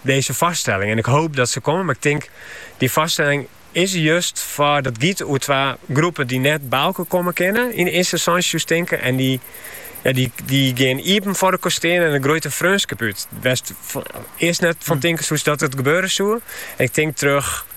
dizze foarstelling en ik hoop dat se komme, mar ik tink dy foarstelling is der just foar dat giet oer twa groepen dy't net by elkoar komme kinne yn de earste ynstânsje soest tinke en dy dy gean iepen foar elkoar te stean en dêr groeit in freonskip út wêr'tst earst net fan tinke soest dat it gebeure soe en ik tink troch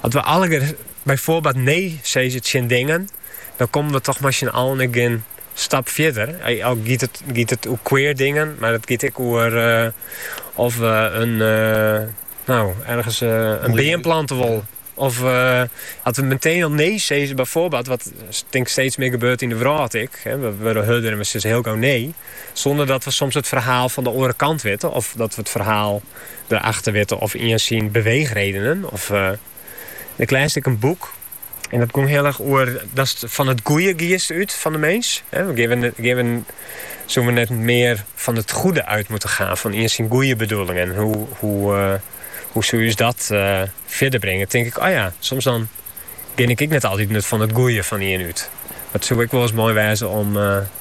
As we allegear byfoarbeeld nee sizze tsjin dingen, dan komme we toch mei syn allen ek gjin stap fierder. Al giet it, giet it oer queer dingen, mar it giet ek oer of we in, nou, ergens in beam plante wollen. Of as we meteen al nee sizze byfoarbeeld, wat tink steeds mear gebeurt yn de wrâld ek, we wurde hurder en we sizze hiel gau nee. Sûnder dat we soms it ferhaal fan de oare kant witte of dat we it ferhaal der achter witte of ien syn beweechredenen. Of ik lies ek in boek en dat gong heel erg oer datst fan it goeie giest út fan de mins. Soene we net mear fan it goede út moatte gean, fan ien syn goeie bedoelingen. Hoe, hoe, hoe soe ús dat fierder bringe? Tink ik, o ja, soms dan gean ik ek net altyd mear fan it goeie fan ien út. Dat soe ek wolris moai wêze om